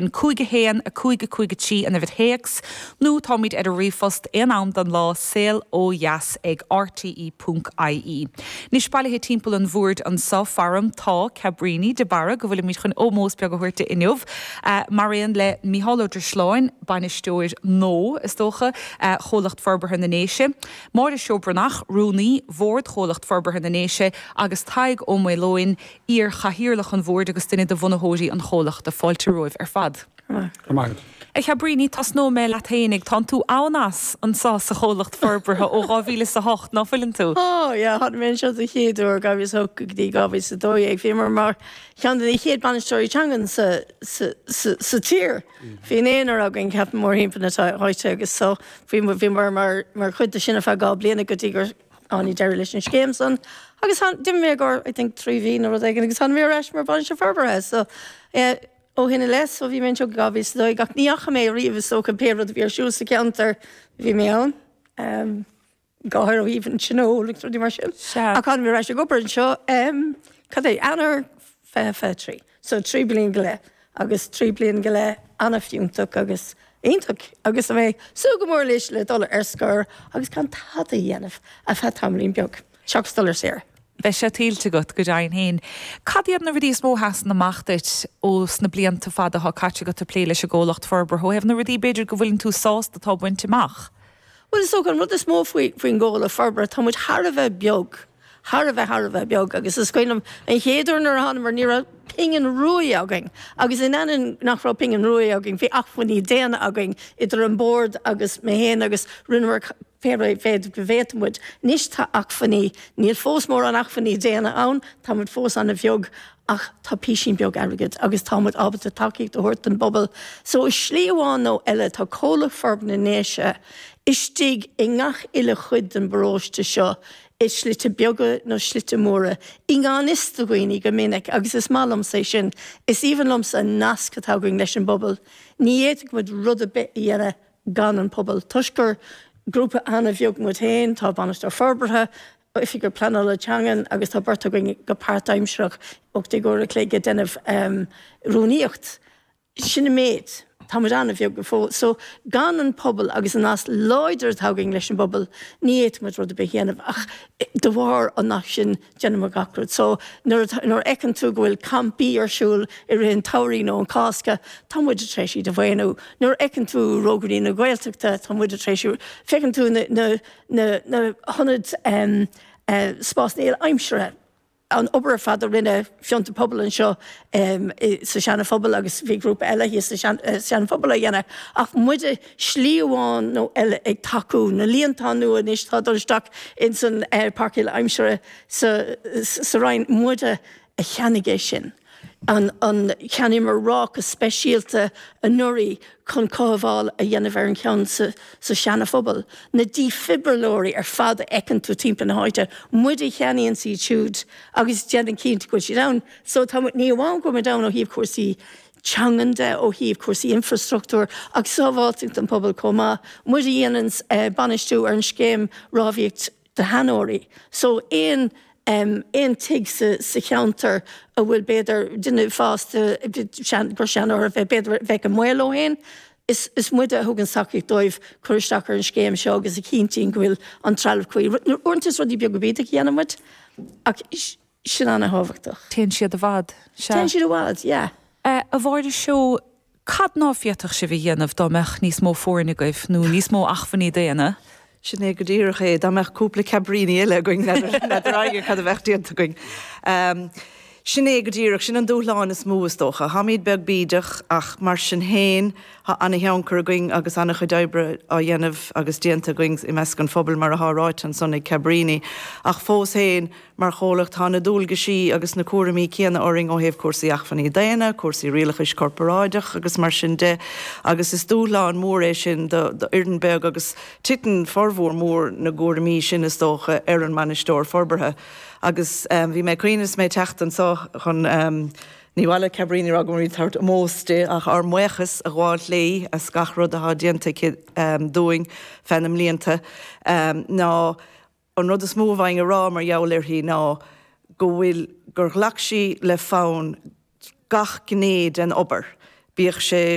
5 1 5 5 3 an uimhir théacs nó táimid ar an ríomhphost aon am den lá, saol ó dheas ag rte ponc ie. Anois, bailithe timpeall an bhoird anseo faram, tá, Cabríní de Barra, go bhfuilimid chun ómós beag a thabhairt di inniu, mar aon le Micheál Ó Drisleáin, Bainisteoir nua, is dócha, Chomhlacht Forbartha na nDéise, Máire Seó Breathnach, Rúnaí, Bhord Chomhlacht Forbartha na nDéise agus Tadhg Ó Maoileoin, iar-Chathaoirleach an Bhoird agus duine de bhunaitheoirí an chomhlachta, fáilte romhaibh ar fad. Go maith agat. A Chabríní, tosnóidh mé leat fhéin, ag, tánn tú an-as, anso sa chomhlacht forbartha ó dhá mhíle is a hocht, ná fuileann tú? Ó, yeah, tháinig mé anseo den chéad uair dhá mhíle is a hocht go dtí dhá mhíle is a dó dhéag, bhíomar mar cheann de na chéad bainisteoirí teangan sa, sa, sa, sa tír, bhí naonúr againn, ceapaim, mórthimpeall na háite agus so, bhí, bhíomar mar, mar chuid de sin ar feadh dhá bliana go dtí gur, Tháinig deireadh leis an scéim san agus d'imigh mé i gcomhair, I think, trí mhí nó rud éigin agus tháinig mé ar ais mar Bhainisteoir Forbartha. So, eh, ó shin i leith, so bhí mé anseo go 2012 ach ní dheachaigh mé ariamh is dócha pé rud a bhí ar siúl sa cheantar bhí mé ann, em, go háirithe ó thaobh an Tionól agus rudaí mar sin. Sea. Ach tháinig mé ar ais ag obair anseo, em, cad é, Eanáir, fiche, fiche trí. So trí bliana go leith, agus trí bliana go leith an-fhiúntach agus iontach, agus mé ag súil go mór anois le dul ar scor agus gan tada a dhéanamh ar feadh tamaillín beag, seachas dul ar saoire. Beidh sé tuillte agat, go deimhin féin. Cad iad na rudaí is mó a sheasann amach duit ó sna blianta fada atá caite agat ag plé leis an gComhlacht Forbartha, ó thaobh na rudaí, b'fhéidir, go bhfuileann tú sásta atá bainte amach? Bhuel, is dócha an rud is mó faoin gComhlacht Forbartha, tá muid thar a bheith beag. thar a bheith, thar a bheith beag, agus is cuimhin liom an chéad uair nuair a thánamar, ní raibh pingin ruaidh againn, agus in ainneoin nach raibh pingin ruaidh againn, bhí acmhainní daonna againn, idir an bord agus mé féin, agus rinneamar pé méid go bhféadfadh muid. Anois tá acmhainní, níl fós mórán acmhainní daonna ann, tá muid fós an-bheag, ach tá písín beag airgid agus tá muid ábalta tacaíocht a thabhairt don bpobal. So i slí amháin nó eile, tá Comhlacht Forbartha na nDéise istigh i ngach uile chuid den bparóiste seo, i slite beaga nó slite móra, i ngan fhios do dhaoine go minic, agus is maith liomsa é sin, is aoibhinn liomsa an nasc atá againn leis an bpobal. Ní fhéadfadh muid rud ar bith a dhéanamh gan an pobal. Toisc gur grúpa an-bheag muid féin, tá Bainisteoir Forbartha, Oifigeach Pleanála Teangan agus tá beirt againn go páirtaimsearach, ocht déag uair an chloig ag déanamh rúnaíocht. Sin an méid. Tá muid an-bheag go fóill. So, gan an pobal agus an nasc láidir atá againn leis an bpobal, ní fhéadfadh muid rud ar bith a dhéanamh ach de bharr an naisc sin, déanann muid gach rud. So, nuair a fheiceann tú go bhfuil campaí ar siúl i rith an tsamhraidh nó an Cásca, tá muide tar éis iad a mhaoiniú. Nuair a fheiceann tú Rógairí na Gaeltachta, tá muide tar éis, feiceann tú na hionaid spásanna aimsire, an obair ar fad a rinne Fiontar Pobal anseo sa Seana Phobal agus bhí grúpa eile thíos sa Sean Phobal á dhéanamh ach muide slí amháin nó eile ag tacú. Na líontáin nua anois atá ag dul isteach ins an Páirc Uile-Aimsire sa Rinn, muide a cheannaigh é sin. Cheannaíomar ráca speisialta anuraidh chun cothabháil a dhéanamh ar an cheann sa Seana-Phobal. Na dífhibrileoirí ar fad a fheiceann tú timpeall na háite, muide a cheannaíonns iad siúd agus a dhéanann cinnte go bhfuil siad ann. So tá muid, ní amháin go bhfuil muid ann ó thaobh cúrsaí teangan de, ó thaobh cúrsaí infreastruchtúir agus sábháilteacht an phobail chomh maith, muid a dhéananns bainistiú ar an scéim rabhaidh, do sheanóirí so aon aon tigh sa sa cheantar a bhfuil b'fhéidir duine fásta seans gur seanóir a bheith b'fhéidir a bheith i mbaol ansin. Is is muide a thug an tacaíocht dóibh cur isteach ar an scéim seo agus a chinntíonn go bhfuil an trealamh cuí. Uaireanta is rudaí beaga bídeacha a dhéanann muid ach Sin an-thábhachtach. Téann siad i bhfad, sea. Téann siad i bhfad, yeah. A Mháire Seo, cad ná féadfadh sibh a dhéanamh dá mbeadh níos mó foirne agaibh, nó níos mó acmhainní daonna? Sin é go díreach é, dá mbeadh cúpla Cabríní eile againn, n'fheadar éinne cad a bheadh déanta againn. Sin é go díreach, sin an dúshlán is mó is dócha. Táimíd beag bídeach ach mar sin féin tá an-thionchar againn agus an-chuid oibre á dhéanamh agus déanta againn i measc an phobail mar athá ráite ansan ag Cabríní ach fós féin, Mar chomhlacht, tá na dualgaisí agus na cúraimí céanna orainn ó thaobh cúrsaí acmhainní daonna, cúrsaí rialachais corparáideach agus mar sin de, agus is dúshlán mór é sin d'fhoireann beag agus titeann formhór mór na gcúraimí sin, is dócha, ar an mBainisteoir Forbartha. Agus bhí mé ag cuimhneamh is mé ag teacht anseo chun, ní mhaith le Cabríní a rá go bhfuilimid ag tabhairt ómós di, ach ár mbuíochas a ghabháil léi as gach rud atá déanta aici dúinn feadh na mblianta, ná An rud is mó a bhféadfainn a rá mar gheall uirthi ná go bhfuil, gur ghlac sí le fonn gach gné den obair, bíodh sé